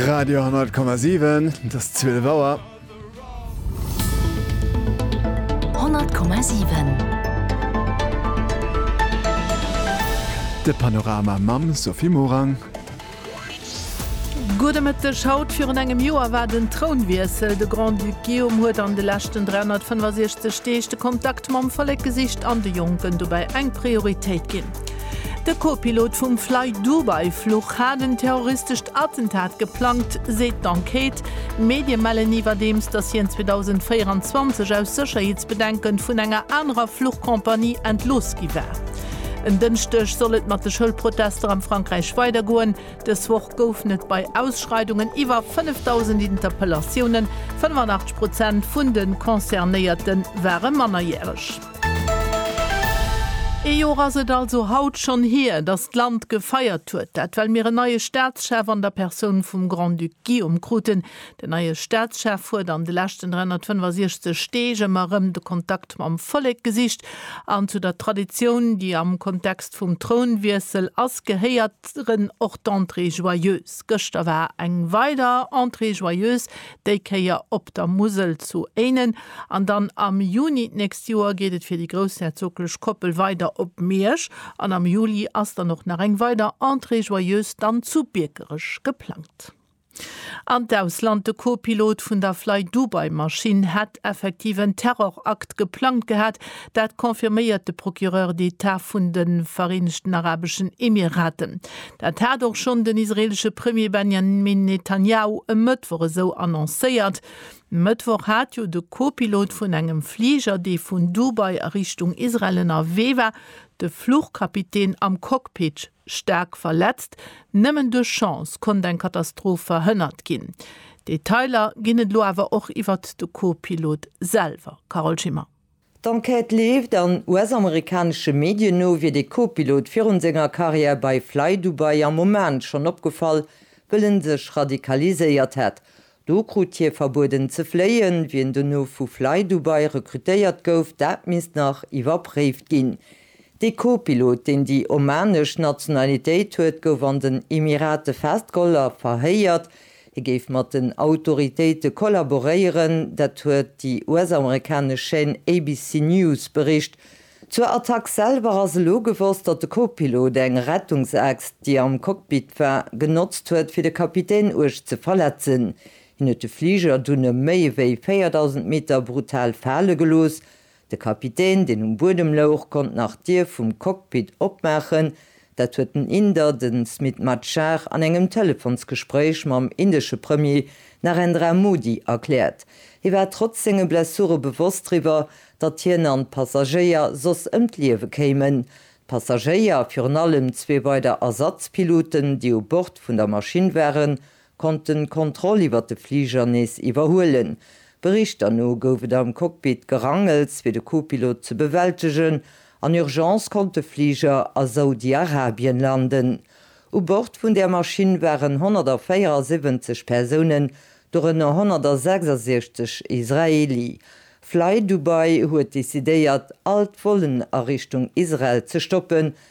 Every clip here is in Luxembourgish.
Radio 10,7 das 12 Auer. 10,7 De Panorama Mam Sophie Morang. Gudemëtteg, haut virun engem Joer war den Trounwiessel. De Grand-Duc Guillaume huet an de leschten 365 Deeg de Kontakt mam Vollek gesicht an de Jonken dobäi eng Prioritéit ginn. De Co-Pilot vum Flydubai-Fluch hat en terroristescht Attentat geplangt, seet d'Enquête. Medie mellen iwwerdeems, datt hien 2024 aus Sécherheetsbedenken vun enger anerer Fluchcompagnie entlooss gi war. En Dënschdeg soll et mat de Schoulprotester am Frankräich weidergoen. Dës Woch goufen et bei Ausschreidungen iwwer 5.000 Interpellatiounen, 85 Prozent vun de Concernéierte ware Mannerjäreg. Ee Jor ass et also haut schonn hier, datt d'Land gefeiert huet. Dat well mir en neie Staatschef an der Persoun vum Grand-Duc Guillaume kruten. Den neie Staatschef huet an de leschten 365 Deeg ëmmer erëm de Kontakt mam Vollek gesicht an zu der Traditioun, déi am Kontext vum Trounwiessel ass, gehéieren och d'Entrées joyeuses. Gëschter war eng weider Entrée joyeuse, déi Kéier op der Musel zu Éinen, an dann am Juni d'nächst Joer geet et fir déi groussherzoglech Koppel weider op Miersch, an am Juli ass dann och nach eng weider Entrée joyeuse dann zu Biekerech geplangt. An d'Ausland, De Co-Pilot vun der Flydubai-Maschinn hätt effektiv en Terrorakt geplangt gehat, dat confirméiert de Procureur d'Etat vun de Vereenegten Arabeschen Emiraten. Dat hat och schonn den israeelesche Premier Benjamin Netanjahu e Mëttwoch esou annoncéiert. E Mëttwoch hat jo de Co-Pilot vun engem Fliger, dee vun Dubai a Richtung Israel ënnerwee war, de Fluchkapitän am Cockpit staark verletzt. Nëmmen duerch Chance konnt eng Katastroph verhënnert ginn. Detailer ginn et elo awer och iwwert de Co-Pilot selwer. Carole Schimmer. D'Enquête leeft, an US-amerikanesche Medien no wier de Co-Pilot virun senger Karriär bei FlyDubai am Oman schonn opgefall, wëll en sech radikaliséiert hätt. Do krut hie verbueden ze fléien. Wien dono vu FlyDubai rekrutéiert gouf, dat misst nach iwwerpréift ginn. De Co-Pilot, deen déi omanesch Nationalitéit huet, gouf an den Emirate festgeholl a verhéiert. Hie géif mat den Autoritéite kollaboréieren, dat huet déi US-amerikanesch Chaîne ABC News bericht. Zur Attack selwer ass elo gewosst, datt de Co-Pilot eng Rettungsaxt, déi am Cockpit war, genotzt huet, fir de Kapitän uerg ze verletzen. Hien huet de Fliger dunn e méi ewéi 4.000 Meter brutal fale gelooss De Kapitän, deen um Buedem louch, konnt nach d'Dier vum Cockpit opmaachen. Dat huet den Inder, de Smit Machar, an engem Telefonsgespréich mam indesche Premier Narendra Modi erkläert. Hie war trotz senge Blessure bewosst driwwer, datt hien an d'Passagéier soss ëm d'Liewe kéimen. D'Passagéier, virun allem zwee weider Ersatzpiloten, déi u Bord vun der Maschinn waren, konnten d'Kontroll iwwer de Fliger nees iwwerhuelen. Berichter no gouf et am Cockpit Gerangels, fir de Co-Pilot ze bewältegen. An Urgence konnt de Fliger a Saudi-Arabien landen. U Bord vun där Maschinn waren 174 Persounen, dorënner 166 Israeli. Flydubai huet decidéiert, all d'Vollen a Richtung Israel ze stoppen,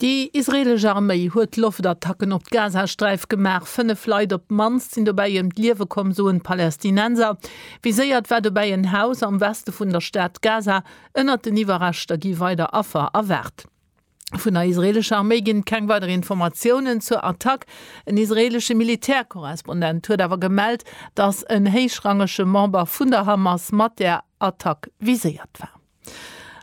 Déi israeelesch Arméi huet Loftattacken op d'Gazasträif gemaach. Fënnef Leit op d'mannst sinn dobäi ëm d'Liewe komm, soen d'Palästinenser. Viséiert war dobäi en Haus am Weste vun der Stad Gaza. Ënnert den Iwwerreschter gi weider Affer erwaart. Vun der israeelescher Arméi ginn et keng weider Informatiounen zur Attack. En israeelesche Militärkorrespondent huet awer gemellt, datt en héichrangege Member vun der Hamas mat där Attack viséiert war.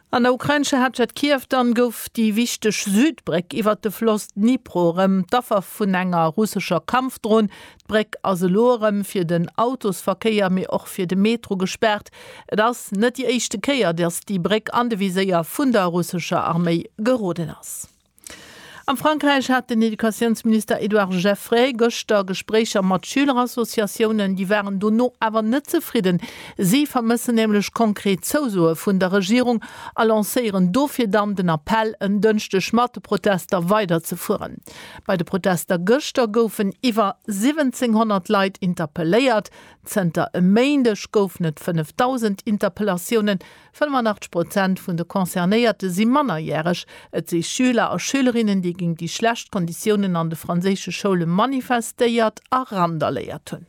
An der ukrainescher Haaptstad Kiew dann gouf déi wichteg Südbréck iwwert de Floss Dnipro erëm d'Affer vun enger russescher Kampfdron. D'Bréck ass elo erëm fir den Autosverkéier, mee och fir de Metro gespaart. Et ass net déi éischte Kéier, datt déi Bréck an de Viséier vun der russescher Arméi geroden ass. Am Frankräich hat den Educatiounsminister Edouard Geffray gëschter Gespréicher mat Schülerassociatiounen. Déi waren dono awer net zefridden. Si vermëssen nämlech konkret Zousoe vun der Regierung a lancéieren dofir dann den Appell, en Dënschdeg mat de Protester weiderzefueren. Bei de Protester gëschter goufen iwwer 1.700 Leit interpelléiert. Zënter e Méindeg goufen et 5.000 Interpellatiounen. 85 Prozent vun de Concernéierte si mannerjäreg. Et si Schüler a Schülerinnen, déi géint déi schlecht Konditiounen an de franséische Schoule manifestéiert a randaléiert hunn.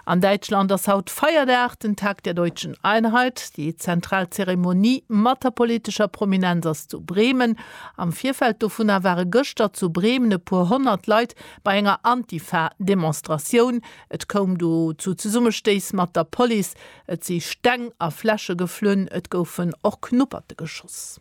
An Däitschland ass haut Feierdag, den Tag der deutschen Einheit. Déi zentral Zeremonie mat der politescher Prominenz ass zu Bremen. Am Virfeld dovunner ware gëschter zu Bremen e puer honnert Leit bei enger Antifa-Demonstratioun. Et koum do zu Zesummestéiss mat der Police. Et si Steng a Fläsche geflunn, et goufen och Knupperte geschoss.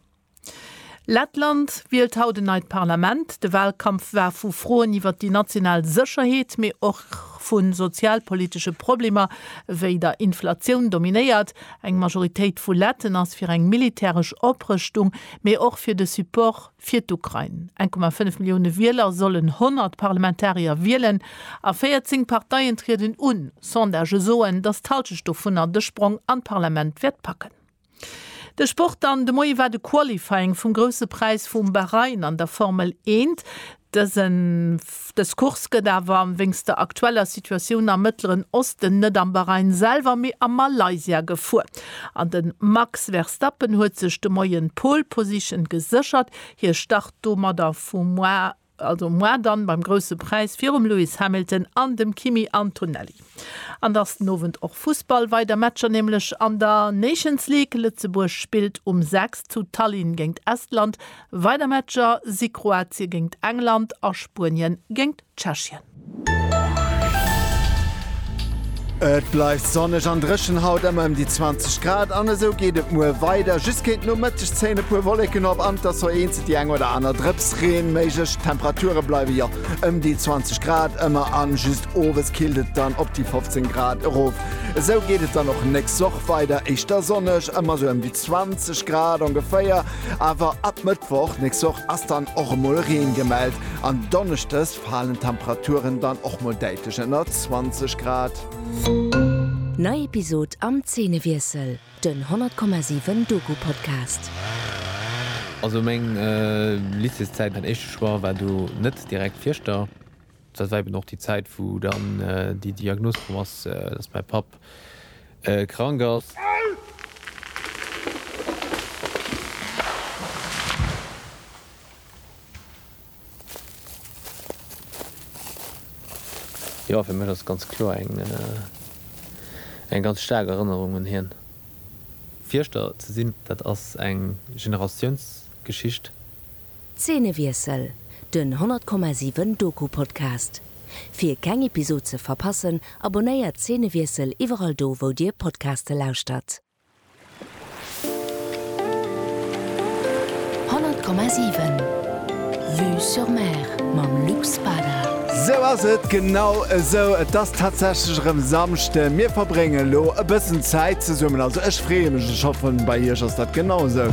Lettland wielt haut en neit Parlament. De Walkampf war vu Froen iwwer déi national Sécherheet, mee och vu sozialpolitesche Problemer wéi der Inflatioun dominéiert. Eng Majoritéit vu Letten ass fir eng militäresch Oprëschtung, mee och fir de Support Fir d'Ukrain, 1,5 Millioune Wieler sollen 100 Parlamentarier wielen a 14 Parteien trieden un. Sondagë soen, datt d'Halschent dovunner de Sprong an d'Parlament wäert packen. De Sport dann, De Moie war de Qualifying vum Grousse Präis vum Bahrain an der Formel Eent. Dëse. Dës Course gëtt awer wéinst der aktueller Situatioun am Mëttleren Osten net am Bahrain selwer, mee a Malaysia gefuer. An de Max Verstappen huet sech de Moien d'Pole Position geséchert. Hie start domadder vu moar, also moar dann, beim Grousse Präis virum Lewis Hamilton an dem Kimi Antonelli. An dass den Owend och Fussball weider Matcher nämlech an der Nations League. Lëtzebuerg spillt um 6 zu Tallinn géingt Estland. Weider Matcher si Kroatie géingt England a Spuenien géingt Tschechien. Et bleift sonneg an dréchen, haut ëmmer ëm déi 20 Grad an esou geet et muer weider. Just géint Nomëtteg zéien e puer Wolleken op an et ass och eenzelt déi eng oder aner Drëpsreen méiglech. D'Temperature bleiwe jo ëm déi 20 Grad ëmmer an just owes killt et dann op déi 15 Grad erof. Esou geet et dann och nächst Woch weider, éischter sonneg, ëmmer sou ëm déi 20 Grad ongeféier, awer ab Mëttwoch nächst Woch ass dann och emol Reen gemellt an donneschdes falen d'Temperaturen dann och mol däitlech ënner 20 Grad. Nei Episod am Zeenewiessel. Den 100,7 Doku Podcast. Also meng Lycéeszäit, mäin éischte Choix war do net direkt Fieschter. Dat war eben och déi Zäit wou dann déi Diagnos komm ass, dass mäi Papp krank ass. Jo, fir mech ass et ganz kloer eng eng ganz staark Erënnerung un hien. Fierschter ze sinn, dat ass eng Generatiounsgeschicht. Zeenewiessel, Den 100,7 Doku-Podcast. Fir keng Episod ze verpassen, abonnéiert Zeenewiessel iwwerall do wou dir Podcaste lauschtert. Honnert Komma siwen Vue sur Mer mam Luc Spada. Sou ass et, genau esou, et ass tatsächlech erëm Samschden. Mir verbréngen elo e bëssen Zäit zesummen, also ech freeë mech, ech hoffen bei iech ass dat genau esou.